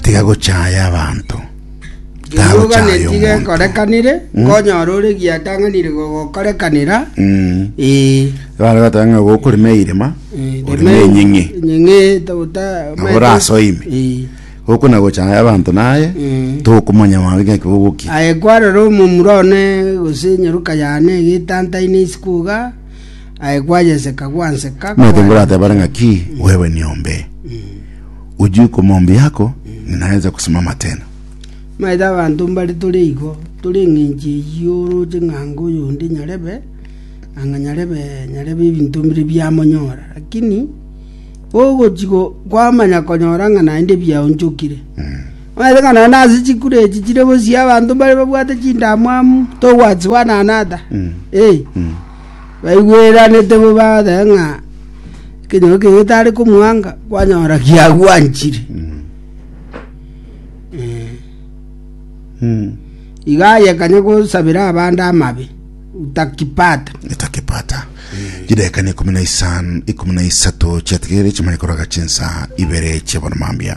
Tiga gochaaya abanto, Rirokaneti tagochaaya omonto. gekorekanire, nkonyora ore giatang'anire gogokorekanera. Mm. Ee. Abana bateba ng'a gokorema eirema oreme enyeng'e Nyeng'e togota. Nabo orasoime. Ee. gokona gochaaya abanto naye Mm. tokomanya maambia ng'aki bogokia Aye kwarora omomura one gose enyeroka yane egetantaine isiko iga Omanyete ngoratebare ng'aki, Wewe niombe, ojie komombi yako, ng'ina aense gosimama tena. Omanyete abanto mbare tore igo, tore engencho eyio oroche ng'a anga oyonde nyarebe, anga nyarebe, nyarebe ebinto bire biamonyora. Lakini ogochi kwamanya konyora ng'a naende biaonchokire. Mwaetananane nase chikuro echi chire bosio abanto mbare babwate chindamwamu, togwati one another. Eh. Baigweranete bo bagateba ng'a ekenyoro keke getare komwanga kwanyora giagwanchire. Eh. Iga aye kanya gosabera abande amabe utakipata. etakepata chidakika na ikomi na isano ikomi na isato chiatigere chimanye koraga chinsa ibere chiabona mambia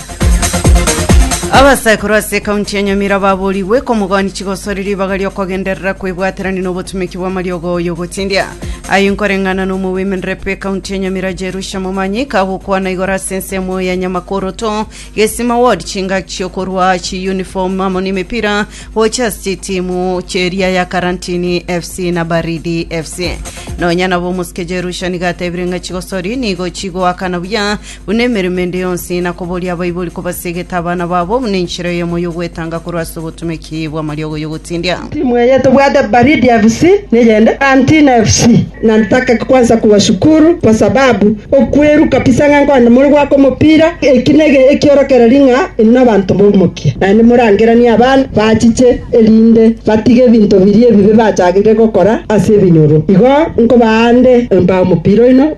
Abasaikuru ase ekaunti ya Nyamira baborigwe komogani chigosori ribaga riokogenderera kwebwaterania nobotumeki bw'amariogo y'ogotindia. Aye nkoreng'ana n'omowomen rep ekaunti ya Nyamira Jerusha Momanyi kagokwana igoro ase ensemo ya Nyamakoro to Gesima Ward chingaki chiokorwa chi uniform amo n'emepira gocha ase chitimu cheria ya Karantini FC na Baridi FC. Nonya nabo omosike Jerusha niga atebire ng'a chigosori nigo chigoakana buya buna emeremo ende yonsi, na koboria abaibori kobasegete abana babo buna enchera eyemo y'ogwetanga korwa ase obotomeki bw'amariogo y'ogotindia. Timu eye tobwate Baridi FC neyende Antina FC nataka kwanza kuwa shukuru kwa sababu okweru kabisa ng'a nkonde more gwaka omopira eki nege ekiorokereri ng'a inwe abanto bomokia naende morangeranie abana bachiche erinde batige ebinto biria ebibe bachagete gokora ase ebinyoro igo nkobaande embao omopira oino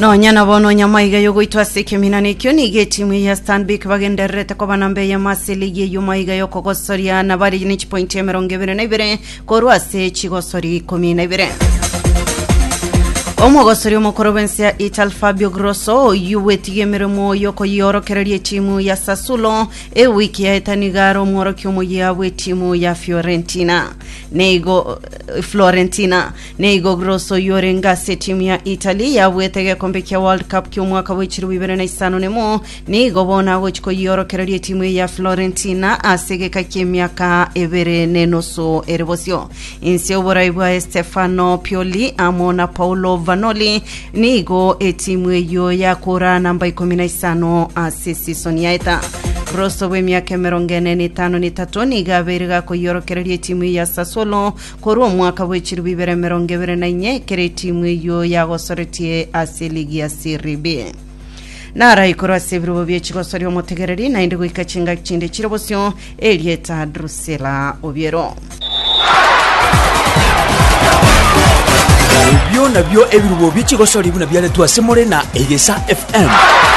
Nonya na bono nyamaiga yogoitwa ase ekeminana ekio nigo etimu ya Stanbic bagendererete koba namba eyemo ase ligi eyio maiga yokogosoria na bari ne chipointi emerongo ebere na ibere korwa ase chigosori ikomi na ibere. Omogosori omokoro bw'ense ya Italy Fabio Grosso oyio gwetiga emeremo yokoyiorokereria etimu ya Sassuolo ewiki yaeta nigo are omworokia omoyia bw'etimu ya Fiorentina. Neigo Florentina Nigo Gross oyio orenge ase etimu ya Italy yabuete egekombe kia World Cup ki'omwaka bwa echirobo ibere na isano nemo, nigo bono agochi koyiorokereria etimu eye ya Florentina ase egeka ki'emiaka ebere nenusu ere bosio. Inse y'oborai bwa Estefano Pioli amo na Paulo Vanoli nigo etimu eyio yakora namba ikomi na isano ase sisoni yaeta. Gross obw'emiaka emerongo ene na etano na etato nigo abeire gakoyiorokereria etimu eye ya Sassuolo Korwa omwaka bw'echiluu bibere emerongo ebere na inye, ekero etimu eyio yagosoretie ase ligi ya Serie B. Naraikorwe ase ebirobo bie chigosoria omotegereri, naende goika chingaki chinde chire bosio, erieta Drusilla Obiero. Ebio nabio ebirobo bie chigosoria buna biaretwe ase more na Egesa FM.